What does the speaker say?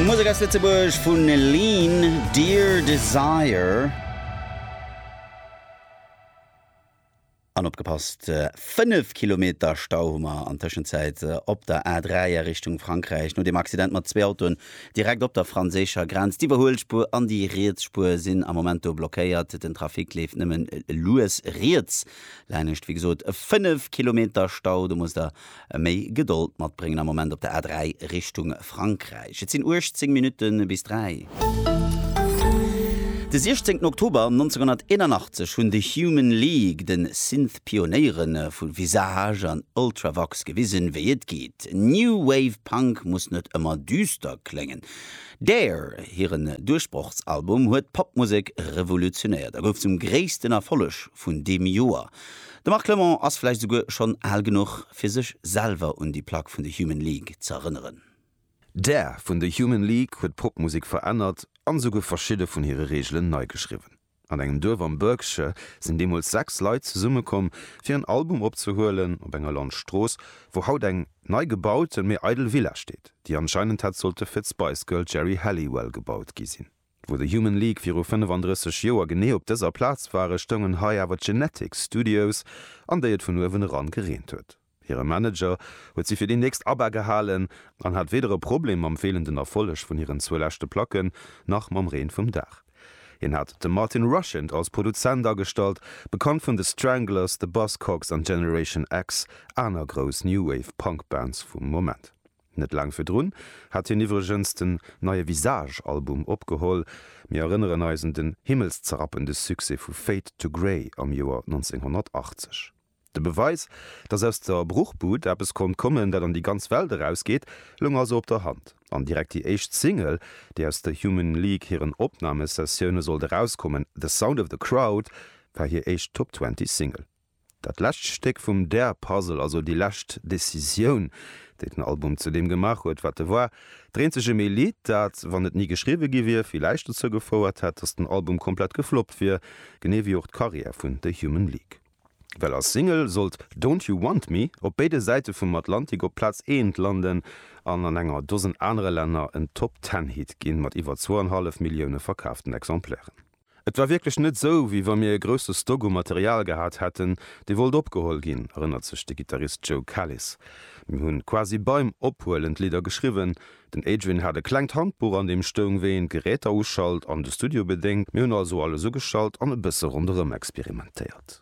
Musek aus Lëtzebuerg vu Lean, Dear Desire. An opgepasst, 5 Kilometer Stau hu mer an Tëschenzäit op der A3 a Richtung Frankräich no deem Accident mat zwee Autoen direkt op der franséischer Grenz. D'Iwwerhuelspuer an déi riets Spuer sinn am Moment do blockéiert. Den Trafic leeft nëmmen lues riets laanescht. Wéi gesot, 5 Kilometer Stau, do musst der e méi Gedold matbréngen am Moment op der A3 Richtung Frankräich. Et sinn 18 Minutte bis 3. De 16 Oktober 1981 hunn The Human League de Synth-Pionéiere vu Visage an Ultravox gewisen, wéi et geet. New Wave Punk muss net ëmmer düster kléngen. Dare, hiren Duerchbrochsalbum, huet d'Popmusek revolutionéiert a gouf zum gréissten Erfolleg vun deem Joer. De Marc Clement ass vläicht esouguer schonn al genuch, fir sech selwer un déi Plack vun The Human League z'erënneren. D'Air vun The Human League huet d'Popmusek verännert an esouguer verschidde vun hire Reegelen nei geschriwwen. An engem Duerf am Berkshire sinn deemools sechs Leit zesummekomm, fir en Album opzehuelen, op enger Landstrooss, wou haut eng nei gebauten, mee eidel Villa steet, déi anscheinend hätt sollte fir d'Spice Girl Geri Halliwell gebaut gi sinn. Wou de Human League viru 35 Joer genee op dëser Plaz ware, stoungen hei awer d'Genetic Studios, an déi et vun uewen eran gereent huet. Hire Manager huet si fir déi nächst ABBA gehalen an hat weder e Problem mam feelenden Erfolleg vun hiren zwou leschte Placken, nach mam Reen vum Daach. Hien hat de Martin Rushent als Produzent agestallt, bekannt vun The Stranglers, The Buzzcocks an Generation X, aner grouss New Wave Punk Bands vum Moment. Net laang virdrun hat hien iwwregens den neie Visage Album opgeholl. Mir erënneren eis un den himmelszerapende Succès vu Fade to Grey am Joer 1980. De Beweis, dass aus der Bruchbud eppes konnt kommen, dat an déi ganz Welt erausgeet, loung also op der Hand. An direkt déi éischt Single, déi aus der Human League hiren Opnamesessioune sollt erauskommen, The Sound of the Crowd, war hir éischt Top-Twenty-Single. Dat lescht Stéck vum Der Puzzle, also déi lescht Decisioun, déi den Album zu deem gemaach huet, wat e war. Dréint sech ëm ee Lidd, dat, wann et ni geschriwwe gi wier, villäicht dozou gefouert hätt, datt den Album komplett gefloppt wier, genee wéi och d'Karriär vun The Human League. Well als Single sollt Don't You Want Me op béide Säite vum Atlantik op Plaz eent landen an an enger Dosen anere Länner en Top-Ten-Hit ginn, mat iwwer zwou an hallef Millioune verkaaften Exemplairen. Et war wierklech net esou, wéi wa mir e grousse Stock u Material gehat hätten, dee wollt opgeholl ginn, erënnert sech de Gittarist Joe Kalis. Mir hu quasi beim Ophuelen d'Lidder geschriwwen. Den Adrian hat e klengt Handbuch, an deem stoung, wéi een d'Geräter uschalt an de Studio bedéngt. Mir hunn also alles ugeschalt an e bësse ronderëm experimentéiert.